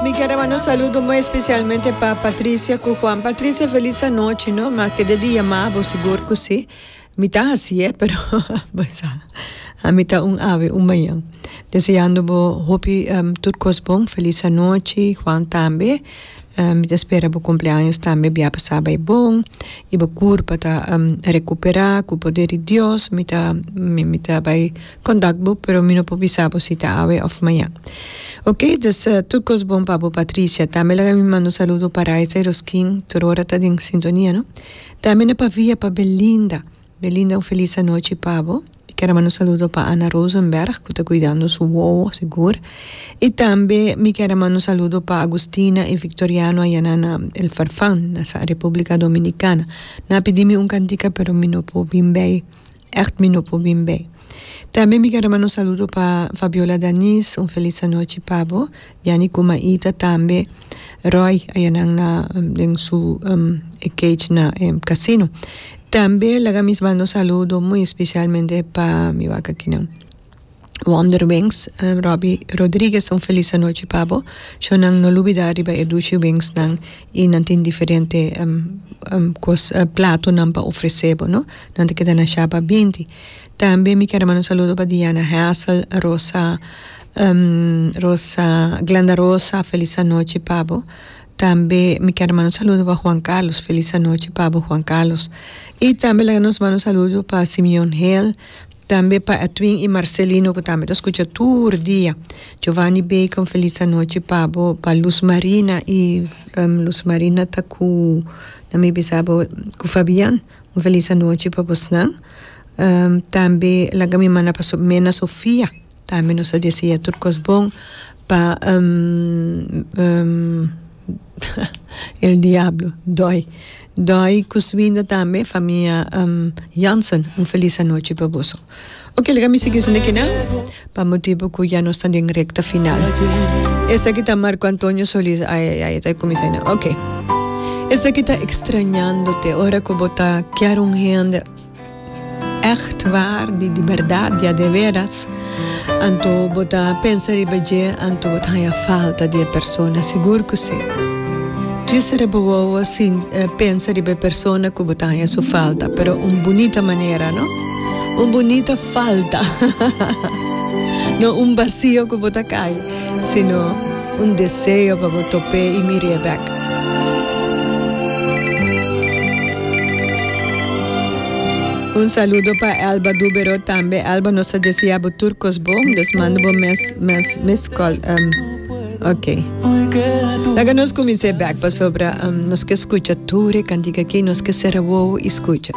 Mi kier a manda un saludo muy especialmente pa Patricia cu Juan. Patricia, feliz anochi, no? Ma kede di yamabo, sigur cu si. Mi ta hasi, eh, pero bo sa. A mi ta un ave, un mañan. Deseando bo hopi um, tur cos bon. Feliz anochi, Juan tambe. Um, mi ta spera bo cumpleaños tambe bia pasa bay bon. Y bo curpa ta um, recupera cu poder di Dios. Mi ta, mi, mi ta bay Kontak bo, pero mi no por bisa bo si ta awe of mañan. Ok, dus tur kos bon pa bo Patricia. Tambe laga mi manda un saludo pa Raiza y Roskin, tur ora ta den sintonia no. Tambe na pavia pa Belinda. Belinda un felis anochi pa bo. Mi ker a manda un saludo pa Anna Rosenberg cu ta cuidando su wowo sigur. Y tambe mi ker a manda un saludo pa Agustina y Victoriano ayana na El Farfan, na sa Republica Dominicana. Nan a pidi mi un cantica pero mi no por bin bay Echt mi no por bin bay. Tambe mi quiero manda un saludo pa Fabiola Danis, un feliz anochi pa bo, Yanni Kumaita tambe Roy ayanan na den su cage na casino. Tambe laga mi manda un saludo muy especialmente pa mi wak akinan. Wonderwings Robby Rodriguez un felis anochi pa bo sho nan no lubida riba e dushi wings nan y nan tin diferente cos plato nan pa ofrece bo no nan ta keda na shaba binti tambe mi ker manda un saludo pa Diana Hassel Rosa Rosa Glenda Rosa felis anochi pa bo tambe mi ker manda un saludo pa Juan Carlos felis anochi pa bo Juan Carlos y tambe laga nos manda un saludo pa Simeon Hale. Tambe pa Edwin y Marcelino cu tambe ta scucha tur dia. Giovanni Bacon feliz anochi pa bo. Pa Luz Marina y Luz Marina ta cu na mi bisa bo cu Fabian un feliz anochi pa bosnan. Tambe laga mi manda pa su hermana Sofia. Tambe nos ta desea tur cos bon pa el diablo doi doi cu su winda tambe famia Jansen un feliz anochi pa boso ok laga mi sigui esun kinan pa motibo cu ya nos ta den recta final esaki ta Marco Antonio Solis ai ai ai ta cuminsa ai no ok esaki ta extrañandote ora cu bo ta kier un hende. Ècht waar, di di bèrdat, di adeveras, anto bo ta pensa riba dje? Anto bo ta haña falta di e persona? Sigur ku sí! Dje sera bo wowo pensa riba e persona ku bo ta haña su falta, pero un bunita manera, no un bunita falta, no un basio ku bo ta kai. Sino un deseo pa bo top'é i mir'é bèk. Un saludo pa Elba Dubero tambe Elba nos ta desea bo tur kos bon dus manda bo mes mes mes kòl ok laga nos kumins'é bèk pasobra nos ke skucha tur e kantika aki nos ke sera wou i skucha.